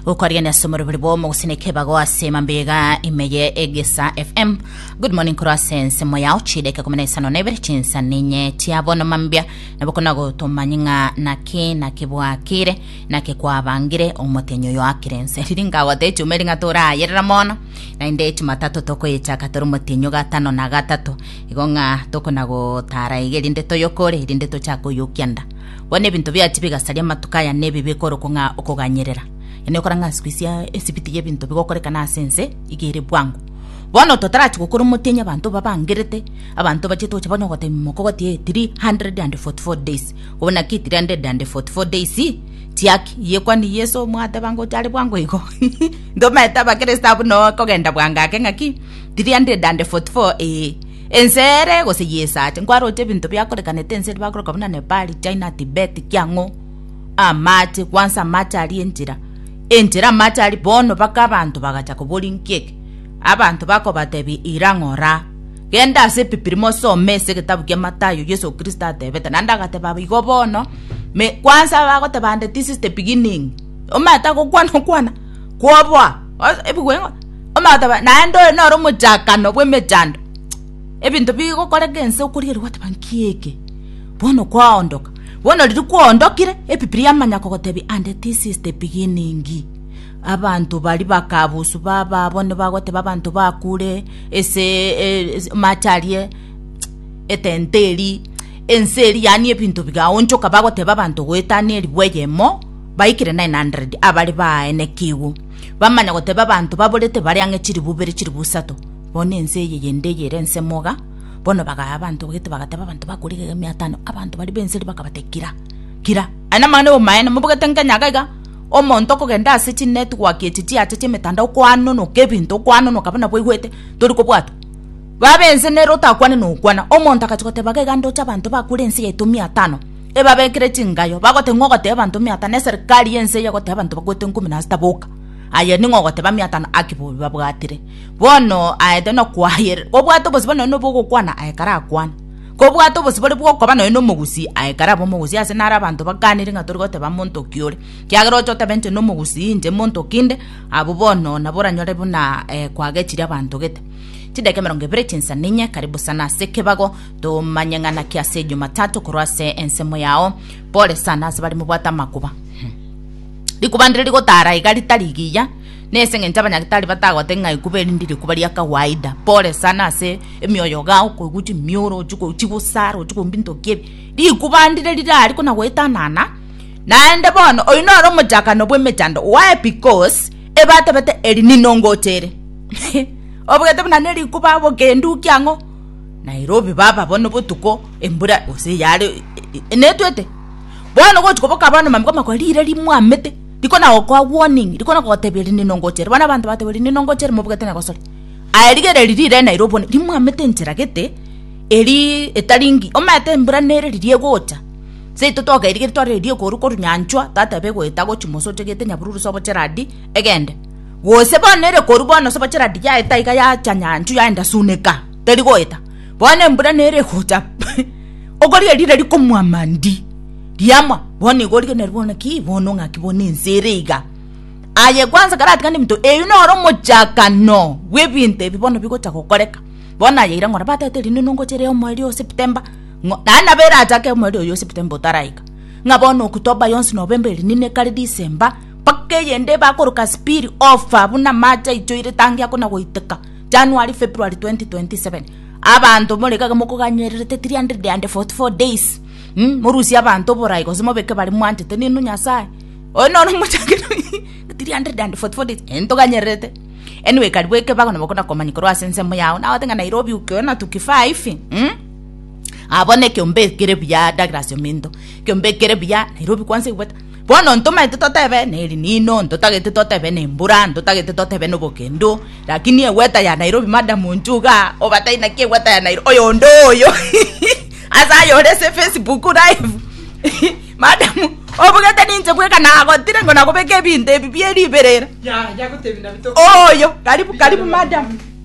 gokwarigania ase omorobori bwa omogusina ekebago ase mambega ime ye egesa fm good morning korwa ase ensemo yao chideke kumi na isano na ibere chinsa ninye chia bono mambia nabo kona gotomanye ng'a naki naki bwakire naki kwabangire omotenyi oyo akire ense riri ngagota echuma eri ng'a torayerera mono naende echumatato tokoyechaka tore omotenyi gatano na gatato igo ng'a tokona gotara iga erinde toyokore erinde tochake oyokia nda Bono ebinto biachia bigasaria amatuko aya nebi bikorokwa ng'a okoganyerera. Yaani okora ng'a isiko isia esibiti y'ebinto bigokorekana ase ense iga ere bwango. Bono totarachia gokora omotienyi abanto babangerete, abanto bachete gocha bono gotebia mokogoti 344 days. Bono naki 344 days chiaki? Yekwania Yeso mwateba ngocha are bwango igo? Ntomaete abakristo abwo noo kogenda bwango ake ng'aki? 344 ee. Ense ere gose y'esacha, nkwarooche ebinto biakorekanete ense ere bakoroka buna Nepal, China, Tibet, kiang'o amache, kwansa amache aria enchera, enchera amache aria bono baka abanto bagacha koboria nkiek, abanto bakobatebia ira ng'ora, genda ase epipiri mosome ase egetabu kia Matayo, Yeso Kristo atebete, naende agateba aba igo bono, me kwansa bagoteba ande this is the beginning, omanyete agokwana okwana, kwoboa. ebigwe ng'a omanyete ba naende oyo noro omochakano bw'emechando ebinto bigokoreka ense okorigereria gwoteba nki eke bono kwaondoka bono riria kwaondokire ebibiri yamanya kogotebia and this is the beginning abanto baria bakabusu baba abwo nibagoteba abanto bakure ase amache aria etenta eria ense eria yaani ebinto bigaonchoka bagoteba abanto goetania erigwa eyemo. Baikire 900 abare baaenekigwe, bamanya gotebia abanto baborete bare ang'e chilifu bere chilifu isato, bono ense eye yende eye ere ensemo iga. Bono bagaya abanto obegete bagatebia abanto bakure igega ime atano, abanto baria b'enseri bakabatebia, Kira, kira, aye namang'ana y'omoeene mobogete nkenya iga iga, omonto okogenda ase chinetwork echi chiacha chi'emetandao okoanonoka ebinto okoanonoka buna bwaigwete tori kobwatwa. Baba ense nere otakwane nokwana, omonto agachia goteba iga iga ndoche abanto bakure ense yaito ime atano. ebabekere chingayo, bagote ng'a ogoteba abanto omiata, na eserikari y'ense eye egoteba abanto bakwete ikomi na sita, Boka! Aye ning'o ogoteba amiata na aki bobe babwatire? Bono aete nokwayerera, kobwate obosibore nonye nobobe ogokwana, aye karakwane. Kobwate obosibore bw'okoba nonye nomogusii, aye karabe omogusii. Ase naro abanto bakanire ng'a tori goteba monto oki ore, kiagera oche otebe inche nomogusii, inche monto oki inde, abwo bono nabo oranyore buna kwagechire abanto gete. Chidaeka emerongo ebere chinsa ninye, karibu sana ase ekebago. Tomanye ng'a naki ase Jumatatu korwa ase ensemo yao pole sana ase baria mobwate amakuba. Rikuba ndire rigotara iga ritari giya, nese ng'encho abanyagitari batagote ng'a ikuba eri ndi rikuba ria kawaida. Pole sana ase emioyo gao koigwa chimioro ochi ko- chigusara ochi koigwa binto ki ebi. Rikuba ndire rirari kona goetanana naende bono oyu noro omochakano bw'emechando. Why? Because ebatebete eri ninongotere. Obwete buna nerikuba bokendu ki ang'o? Nairobi baba bono botuko embura gose yare netwete bono gochi koboka bono mamko makwa rire rimwamete rikona gokoa warning rikona gotebia rinde nongochere bono abanto bateba rinde nongochere mobugate na gosore aye rigereria rire Nairobi bono rimwamete enchera gete erii etari ngi omanyete embura nere riria egocha seito twakerigereiri twarorire riria ekoru koru nyanchwa tateba egoeta gochi mosoche gete nyabururu sobo cheradi egende. Gose bono ere korwa bono ase obocherati yaeta iga yacha nyanchwa yaenda suneka, teri goeta. Bono embura nere egocha okorigia riria rikomwama ndi, riamwa bono iga origeneri bono ki bono ng'aki bono ense ere iga. Aye kwanza ekero atigani ebinto eyio noro omochakano bw'ebinto ebi bono bigocha gokoreka. Bono aye aira ng'ora batete rinde nongocha ere omoerio o September ng'o naende nabo erachake omoerio oyio o September otaraika. Ng'a bono October yonsi November eri nine kare December. mpaka eyende bakoroka spill over buna amache aichoire tangi akona goiteka January, February 2027 abanto more iga mokoganyererete 344 days mm morusie abanto oborai gose mobeke bare mwanchete ninu Nyasaye oyo noro omochake 344 days eh ntoganyererete anyway karibu ekebago nabo okona komanya korwa ase ensemo yago nagote ng'a Nairobi ukiona tukifaa hivi mm abona ekeombe ekere buya Douglas Ominto ekeombe ekere buya Nairobi kwanza ebuete. Bono ntomaete totebe neriinino, ntotagete totebe nembura, ntotagete totebe nobokendo, lakini egweta ya Nairobi madam nchuga obatai naki egweta ya Nairobi oyo onde oyo ase ayore ase Facebook live madam obugete ninche bweka nagotire ngo nagobeka ebinto ebi bieriberera oyo karibu karibu madam.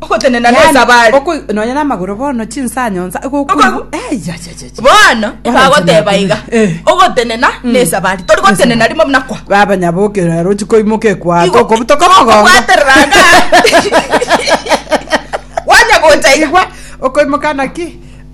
Ogotenena Yaani, nesabari. okoi- nonya namagoro bono chinsa nyonsa Okoigwa. egokuigwa bono Oranchina ekagoteba akure. iga Eh. ogotenena nesabari tori gotenena rimo buna kwa baba nyabokera rochi koimoka ekwako Igo- kobutoka igo mogongo okobwaterera anga. wanya gocha iga igwa okoimoka naki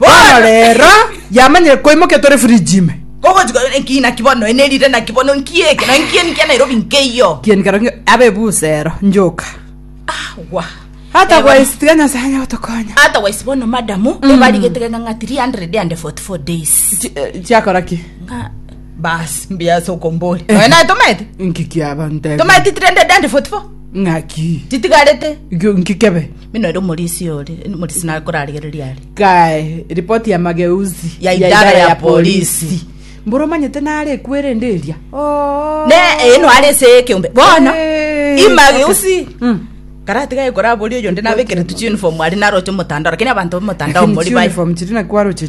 Bono rero, yamanyire koimokia tore fridge ime. Kogochika oyo nki naki bono ene rire naki bono nki eke na nki eni kia Nairobi nkeiyo. Kieni kero nge- abe busero njoka. Wa. Hata kwa isitiga Nyasaye anya gotokonya. Ata waisi bono madamu ebarigete geka ng'a 344 days. Chi- eh, Chiakora ki? Ng'a bas mbiasa okombori. Oyo naye tomete. Nki kiaba ntebe? Tomete 344. Ng'aki? Titigarete. Gyo- Nki kebe? Bino ere omorisia ore, omorisia nakorarigererie are. Kae ripoti ya mageuzi Ya idara ya polisi. mboro manyete nare ekwere ende eria Oh. Ne eno are ase ekeombe. Bono, Eh, imageusi. okay. Mm. Karatiga ekora abori oyonde nabekeretu uniform ari naroche omotandao, lakini abanto b'omotandao Lakini mori chi bai. uniform chiri nakwaroche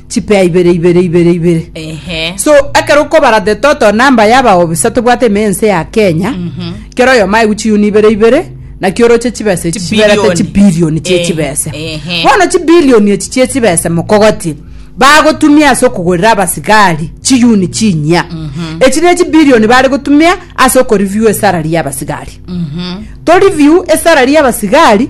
chipea ibere ibere ibere ibere Ehe. so ekero okobara the total number yabaobisa tobwate ime ense ya kenya kera oyomo aigwe chiyuni ibere ibere naki oroche chibesa echi chiberete Chibilioni. chibilioni Eh, chiechibesa ehe. bono chibilioni echi chiechibesa mokogotie bagotumia ase okogorera abasigari chiyuni chinyia echi ne chibilioni bare gotumia ase okoreview esalary yabasigari toreview esalary yabasigari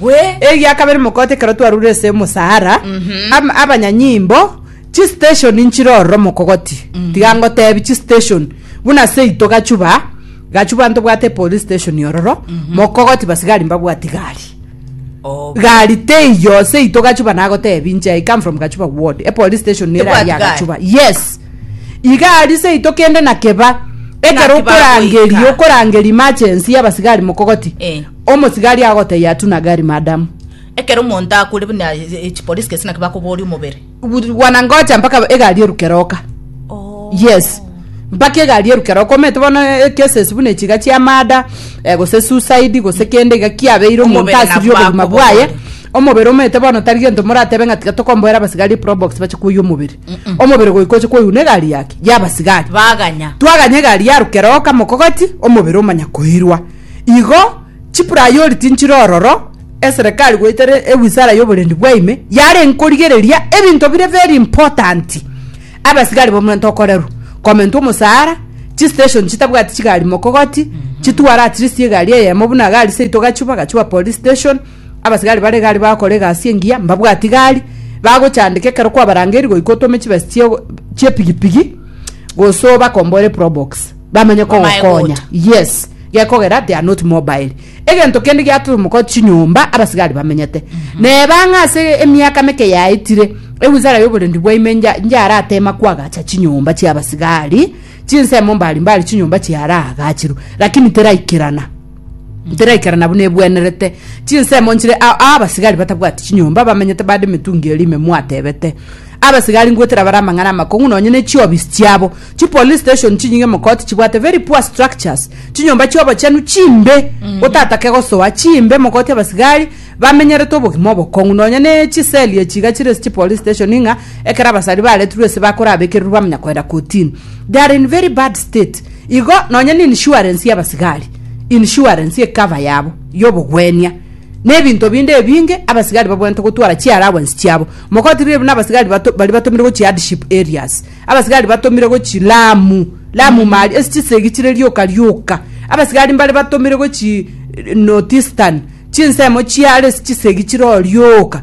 Gwe. Eria kabere mogote ekero twarure ase omosara am- abanyanyimbo chistation nchire ororo mokogoti tiga ngotebi chistation buna seito gachuba gachuba ntobwate police station ororo mokogoti basigari mbabwati gari Oh. gari teiyo seito gachuba nagotebi nche i come from gachuba ward epolice station nere Ebwati aria gari. gachuba yes igari seito kende nakeba ekero Nakiba okorangeria goika. okorangeria emergency yabasigari mokogoti Eh. Omosigari agotebia atu na gari, Madam. Ekero omonto akure buna echipolice gese naki bakoboria omobere. Wanangoja mpaka egari eruke roka. Yes. Mpaka egari eruke roka. Omanyete bono eh, cases buna echiga chia murder, eh, gose suicide, gose kende iga kiabeire omonto Omobere nabwo asibia obogima akobogoria. bwaye. Omobere omanyete bono tari gento moratebe ng'a tiga tokomboera abasigari probox bache koyia omobere. Omobere goika oche koyuna egari yake, yabasigari. Baganya. Twaganya egari yaruke roka mokogoti, omobere omanya koirwa. Igo chiprayoliti nchire ororo, eserekari goeta ewizara y'oborendi bwaime yarenge korigereria ebinto bire very important, abasigari b'omonto okorerwa, komentwa omosara, chistation chitabwati chigari mokogoti, chitware at least egari eyemo buna egari seito gachwa bagachuba police station, abasigari bare egari bagakora egasi engiya mbabwati gari, bagochandeka ekero kwabarangeiri goika otome chibesa chie chie pigipigi gosoa bakombore probox. bamanye kogokonya yes gekogera they are not mobile egento kende giatumoko chinyomba abasigari bamenyete mhm. neba ng'a ase emiaka meke yaetire ewizara y'oborendi bwaime njaratema kwagacha chinyomba chiabasigari chinsemo mbari mbari chinyomba chiaragachirwe lakini teraikerana Ntiraikara nabwo nebwenerete chinsemo nchire ao aa abasigari batabwati chinyomba bamenyete bande emetungi eria ime mwatebete abasigari ngwetera bare amang'ana amakong'u nonye ne chiobisi chiabo chipolice station chinyinge mokoti chibwate very poor structures chinyomba chiobochenu chimbe otatake gosoa chimbe mokoti abasigari bamenyerete obogima obokong'u nonye ne chiseli echi iga chire ase chipolice station ng'a ekero abasari baretirwe ase bakorabekererwa bamanya koenda kotini they are in very bad state Igo nonya n'inshuarensi y'abasigari, insurance ekava yabo y'obogwenia, na ebinto binde ebinge abasigari babwenerete gotwara chi'allowance chiabo. Mogoti riria buna abasigari bato baria batomire go chi'hardship areas, abasigari batomire go chi Lamu, Lamu Mali, ase chisegi chire rioka rioka, abasigari mbare batomire go chi Northeastern, chinsemo chiare ase chisegi chire oo rioka.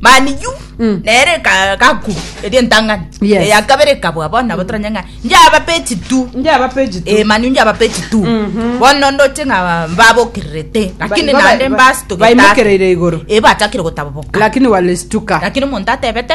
maniyu Mm. nere ka- kaku eri entang'ani Yes. eya kabere ekabwa bono nabo toranye ng'a njaba peji tu njaba peji tu Eh, maniyu njaba peji tu Mhm. bono ndoche ng'a babokererete lakini Ba- ba- nande ba- mbasitogeta baimokereire igoro. ebachakire gotaboboka lakini walistuka lakini omonto atebete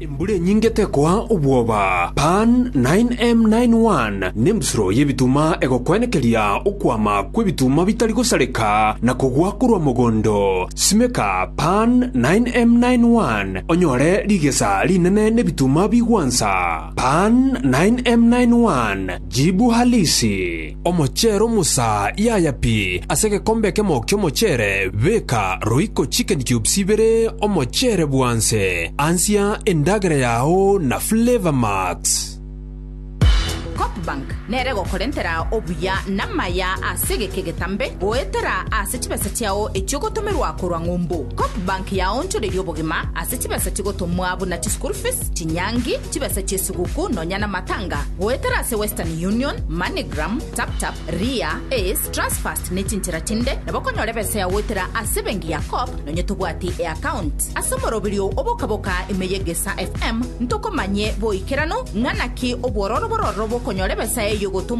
Embura enyinge tekoa obwoba. Pan. 9M91 Nembusuro y'ebituma egokwenekeria okwama kw'ebituma bitari gosareka na kogwa korwa mogondo. Simeka Pan. 9M91 onyore rigesa rinene n'ebituma bigwansa. Pan. 9M91 Jibu Halisi. Omochero Musa yaya pi ase egekombe ekemo ki'omochero, beka roiko chicken cubes ibere omochero bwanse, ansia endagera yao na Flavour Max. Copbank nere egokorentera obuya namaya ase egeka egetambe goetera ase chibesa chiao echiogotomerwa korwa ng'umbu. Copbank yaonchoreria obogima ase chibesa chigotomwa buna chischool fees, chinyangi, chibesa chie Tuguku nonya na matanga goetera ase Western Union, Moneygram, TapTap, Ria, Ace, Transfast ne chinchera chinde nabo okonyora ebesa ya goetera ase ebenki ya Co-op nonya tobwati eaccount. Ase omoroberio oo obokaboka ime ye Gesa FM ntokomanye boikeranu ng'a naki obwororo bororo bokonyora ebesa eyo gotomwa